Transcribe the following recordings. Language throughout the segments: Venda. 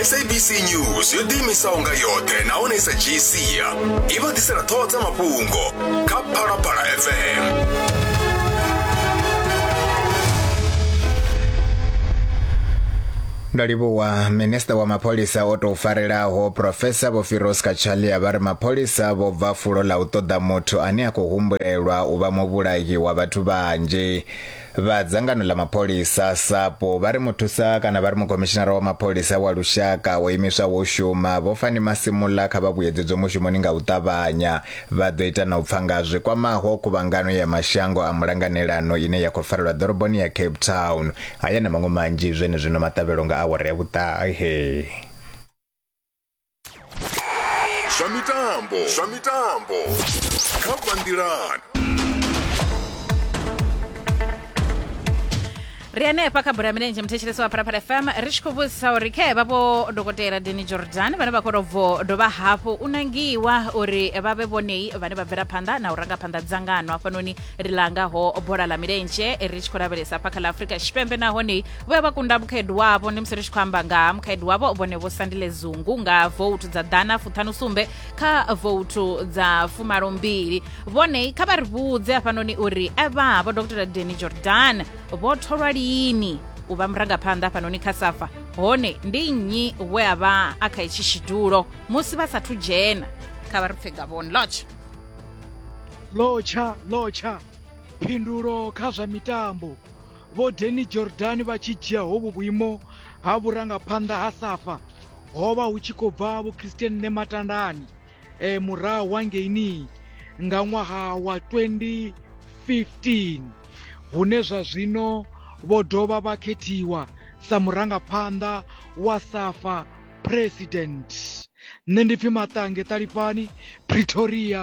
sabc news yo ḓiimisaho nga yoṱhe nahone i sa dzhii sia i vha ḓisela ṱhoho dza mafhungo kha phalaphala fm ndo livhuwa minista wa mapholisa o tou farelaho profesa vho firos kachalia vha ri mapholisa vho bva fulo ḽa u ṱoḓa muthu ane a khou humbulelwa u vha muvhulahi wa vhathu vhanzhi Vha dzangano ḽa mapholisa, SAPO, vha ri muthusa kana vha ri mukomishinara wa mapholisa wa lushaka o imiswaho u shuma, Vho Fani Masimula kha vha vhuyedzedzwe mushumoni nga u ṱavhanya. Vha ḓo ita na u pfa nga zwi kwamaho khuvhangano ya mashango a mulanganelano ine ya khou farelwa ḓoroboni ya Cape Town. Haya na maṅwe manzhi zwenezwino maṱavhelo nga awara ya vhuṱahe. zwa mitambo zwa mitambo kha banngilani ri hanefha kha bola ya milenzhe muthetshelesi wa phalaphala fm ri tshi khou vhudzisa uri khe vha vho dokotela deni jordan vhane vha khou tovho dovha hafhu u nangiwa uri vha vhe vhonei vhane vha bvela phanḓa na u ranga phanḓa dzangano hafhanoni ri langaho bola ḽa milenzhe ri tshi khou lavhelesa hafha kha ḽa afrika tshipembe nahone vhuya vha kunda mukhaedu wavho ndi musi ri tshi khou amba nga mukhaedu wavho vhone vho sandile zungu nga voutu dza ḓana fuṱhanu sumbe kha voutu dza fumalo mbili vhone kha vha ri vhudze hafhanoni uri evha vho dr deni jordan vho tholwa lini u vha murangaphanḓa hafhanoni kha safa hone ndi nnyi we a vha a kha itshi tshidulo musi vha sathu dzhena kha vha ri pfe gavhoni lotsha lotsha lotsha phindulo kha zwa mitambo Vho Danny Jordaan vha tshi dzhia hovhu vhuimo ha vhurangaphanḓa ha Safa ho vha hu tshi khou bva Vho Christian Nematandani e murahu wa ngeinii nga ṅwaha wa 2015 hune zwa zwino vho dovha vha khethiwa sa murangaphanḓa wa Safa President. Nṋe ndi pfi Maṱange Ṱalifhani, Pretoria.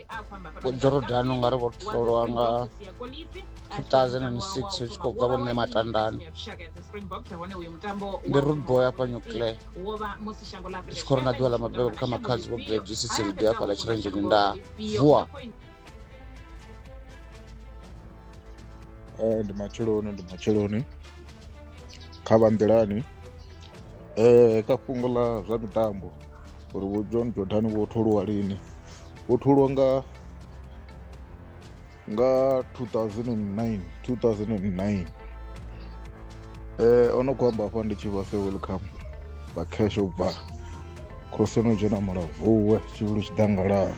vhojordan u nga ri vho tholwa nga 2006 hu tshi khou bva vhone matandani ndi rudboy afha nuclear ndi tshi khou ri na ḓuvha ḽa mabebo kha makhadzi vho bjsisiridi afha ḽa tshirenzheni nda vuwa eh, ndi matsheloni ndi matsheloni kha vha nḓilani um eh, kha fhungo ḽa zwa mitambo uri vho john jordan vho tholiwa lini vho tholiwa nga nga 2009 2009 eh ono khou amba hafha ndi tshi vha se welcome vha cash u bva khosi no dzhena mulavuwe tshivhulu tshiḓangalani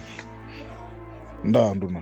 ndaa nduna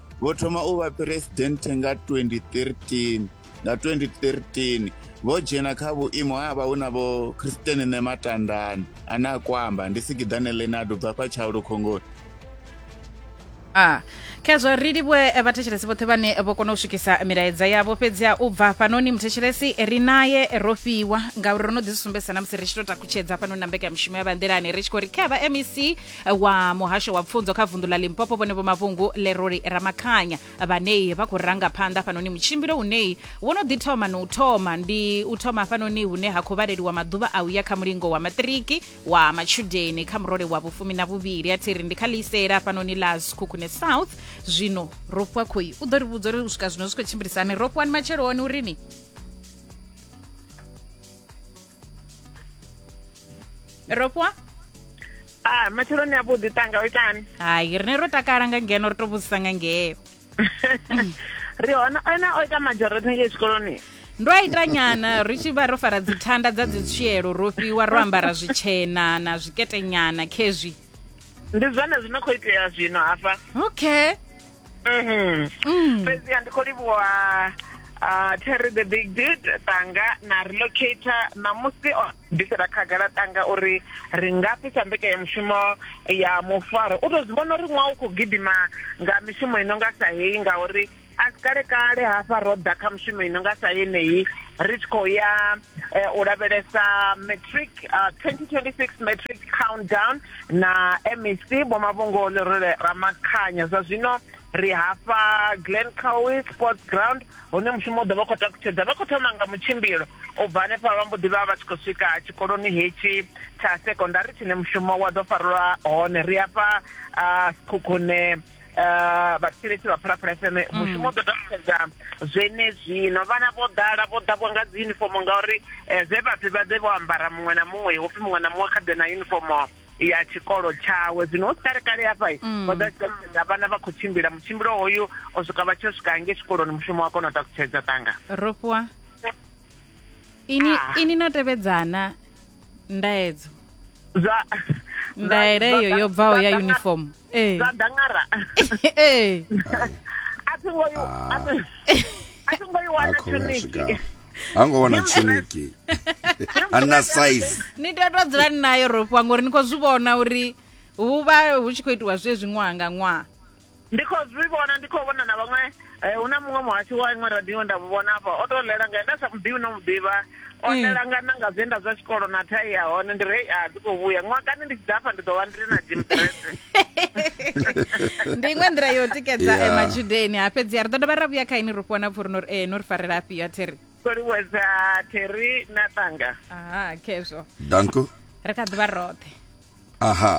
vho thoma u vha phresidennde nga 2013 nga 2013 vho dzhena kha vhuimo ha vha hu na vho christian nematandani ane a kwamba ndi sigiḓane lenado bva fha tshaulu khongoni a khezwo ri livhuwe eh, vhathetshelesi vhoṱhe vhane vho kona u swikisa milaedza yavho fhedzi a u bva hafhanoni muthetshelesi ri naye ro fhiwa ngauri ro no ḓi zwi sumbedzisa na musi ri tshi to takutshedza hafhanoni na mbekanyamushumo ya vhanḓilani ri tshi khou ri kha vha mec wa muhasho wa pfunzo kha vunḓu ḽa limpopo vhone vho mavhungu leroli ramakhanya vhanei vha khou ranga phanḓa hafhanoni mutshimbilo unei wo no ḓi thoma na u thoma ndi u thoma hafhanoni hune ha khou vhaleliwa maḓuvha a uya kha mulingo wa maṱiriki wa matshudeni kha murole wa vhufumi na vhuvhili a thiri ndi kha ḽisela hafhanoni ḽa zikhukhune south zwino ro fhiwa khoi u ḓo ri vhudza uri u swika zwino zwi khou tshimbilisani ro fhiwani matsheloni urini ro fhiwa ah matsheloni a vhuḓi tanga o itani hai rine ro takala nga ngeno ri to vhudzisa nga ngeo ri hona ena o ita majority ngei tshikoloni ndo a ita nyana ri tshi vha ro fara dzithanda dza dzitswielo ro fhiwa ro ambara zwitshena na zwiketenyana khezwi ndi zwone zwino khou itea zwino hafha okay Mm. fhedziha ndi khou livhuwa ah, terry the big did tanga na relocator ṋamusi o bvisela khagala tanga uri ri nga fhisa mbekanyamushumo ya mufaro u tou zwi vhona uri ṅwaha u khou gidima nga mishumo i no nga sa heyi ngauri a si kale kale hafha ro ḓa kha mushumo i no nga sa yeneyi ri tshi khou ya eh, u lavhelesa matric ah, 2026 matric countdown na mec vhomavhungo lerole ramakhanya zwa zwino ri hafha glen cowe sports ground hune mushumo u ḓo vha khou takutshedza vha khou thoma nga mutshimbilo u bva hanefha vha mbo ḓi vha vha tshi khou swika tshikoloni hetshi tsha sekondari tshine mushumo wa ḓo farelwa hone ri hafha khukhune eh, vhathetshelesi vha phalaphala fm mm. mushumo ḓo takusedza zwenezwino vhana vho ḓala vho ḓavho nga dzi unifomo ngauri eh, zwe vhafi vha ḓe vho ambara muṅwe na muṅwe hopfi muṅwe na muṅwe kha ḓe na unifomo ya tshikolo tshawe zwino hu si kale kale hafha mm. vha ḓo tshiaa vhana vha khou tshimbila mutshimbilo hoyu o swika vha tshi o swika nge tshikoloni mushumo wa kona u takutshedza tanga rofhiwa ini ah. ini no tevhedzana ndaedzo zwa ndaela eyo yo bvaho ya uniform eh. zwa dangara eh. a thi ngo i a thi ngo i wana tshoniki hango wana tshoniki ana size ni tea to dzula ni nayo rofhiwa ngori ni khou zwi vhona uri hu vha hu tshi khou itiwa zwe zwi ṅwaha nga ṅwaha ndi khou zwi vhona ndi khou vhona na vhaṅwe eh, hu na muṅwe muhashi wa iṅwe radio nda mu vhona afha o tou ḽela nga nda sa mu ḓivhi no mu ḓivha o mm. ḽela nga na nga zwe nda zwa tshikolo na thai ya hone ndi rei a dzi khou vhuya ṅwakani ndi tshi ḓa afha ndi ḓo vha ndi na jim drese ndi iṅwe nḓila yo tikedza eh, matshudeni ha fhedzi a ri ḓo dovha ra vhuya kha ini ri fhiwa na pfuri nori ee no ri farela afhio a theri koliweza theri na tanga aha khezwo danko ri kha ḓivha roṱhe aha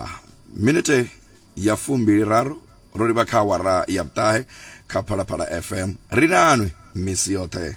minute ya fumbili raru ro livha kha awara ya vhuṱahe kha phalaphala fm ri nanwi misi yoṱhe